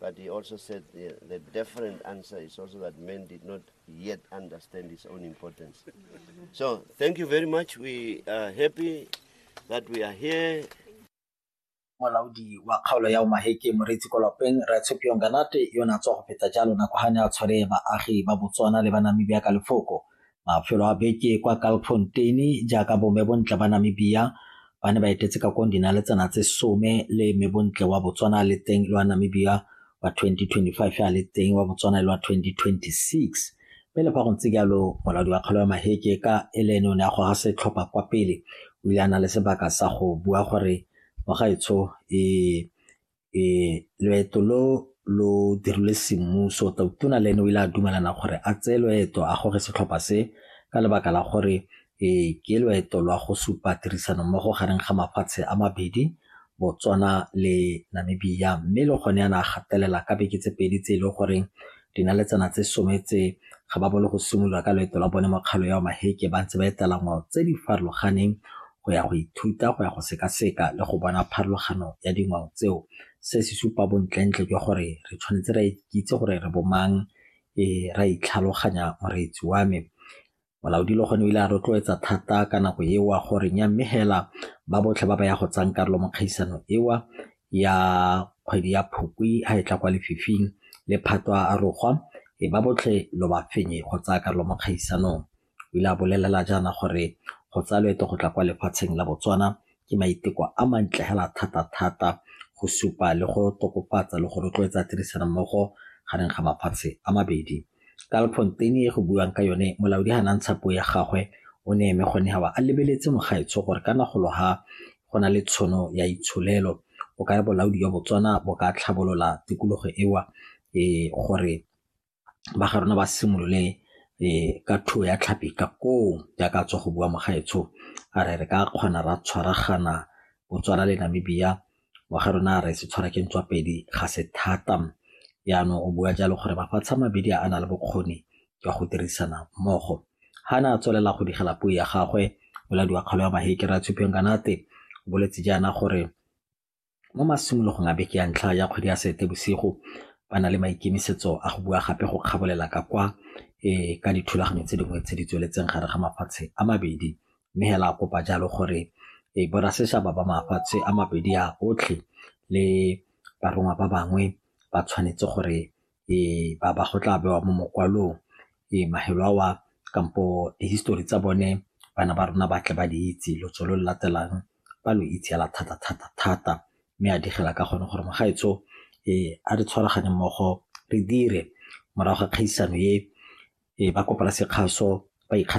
But he also said the, the different answer is also that men did not yet understand his own importance. so thank you very much. We are happy that we are here. molaodi wa kgaolo ya omaheke moreetsi ko lapeng ratshepiong kanate yo ne a tswa go feta jalo nako ga ne a tshware baagi ba botswana le ba namibia ka lefoko Mafelo a beke kwa Kalkfontein jaaka bo Mebontle ba Namibia ba ne ba etetse ka kong dinaletsana tse some le Mebontle wa Botswana le teng lwa Namibia wa 2025 a le teng wa Botswana lwa 2026 mme le fa go ntse jalo molaodi wa kgalo ya maheke ka ele ene o ne a goga setlhopha kwa pele o ile a na le sebaka sa go bua gore mogaetsho e e loeto lo lo dirilwe semmuso tona le ene o ile a dumelana gore a tseye loeto a gore setlhopha se ka lebaka la gore e ke loeto lwa go supa tirisano mmogo gareng ga mafatshe a mabedi Botswana le Namibia mme le gone yana a gatelela ka beke tse pedi tse e leng goreng Dinaletsana tse some tse ga ba bolo go simolola ka loeto la bone mo kgalo ya Maheke ba ntse ba etela ngwao tse di farologaneng go ya go ithuta go ya go sekaseka le go bona pharologano ya dingwao tseo se se supa bontlentle jwa gore re tshwanetse ra ikitse gore re bomang e ra itlhaloganya moreetsi wa me Molaodi le gone o ile a rotloetsa thata ka nako ewa gore nya mme hela ba botlhe ba ba ya go tsang karolo mo kgaisano ewa ya kgwedi ya Phukwi ha e tla kwa lefifing le phatwa a rogwa e ba botlhe lo ba fenye go tsaya karolo mo kgaisanong. O ile a bolelela jaana gore go tsaya loeto go tla kwa lefatsheng la Botswana ke maiteko a mantle hela thata-thata go supa le go tokofatsa le go rotloetsa tirisanommogo gareng ga mafatshe a mabedi. Ka Alfonteine e go buiwang ka yone, molaodi ha ne a ntsha puo ya gagwe o ne eme gone a ba a lebeletse mogaetsho gore ka nagolo ha go na le tshono ya itsholelo, o kare bolaodi jwa Botswana bo ka tlhabolola tikologo ewa e gore ba ga rona ba simolole ka thuo ya tlhapi ka koo jaaka tswa go bua mogaetsho a re re ka kgona ra tshwaragana Botswana le Namibia wa ga rona re se tshwara ke ntswa pedi ga se thata jaanong o bua jalo gore mafatshe a mabedi a na le bokgoni jwa go dirisana mmogo ga ne a tswelela go digela puo ya gagwe boladiwa kgolo ya mahekere a tshupeng kanate o boletse jaana gore Mo masimologong a beke ya ntlha ya kgwedi ya Seetebosigo, ba na le maikemisetso a go bua gape go kgabolela ka kwa e ka dithulaganyo tse dingwe tse di tsweletseng gare ga mafatshe a mabedi, mme hela a kopa jalo gore e borasetšhaba ba mafatshe a mabedi a otlhe le barongwa ba bangwe ba tshwanetse gore ba ba go tla bewa mo mokwalong mafelo ao a kampo di-history tsa bone bana ba rona ba tle ba di itse lotso lo lo latelang ba lo itse hela thata-thata-thata mme a digela ka gone gore magaetsho a re tshwaragane mmogo re dire morago ga kgaisano e ba kopela sekgaso ba .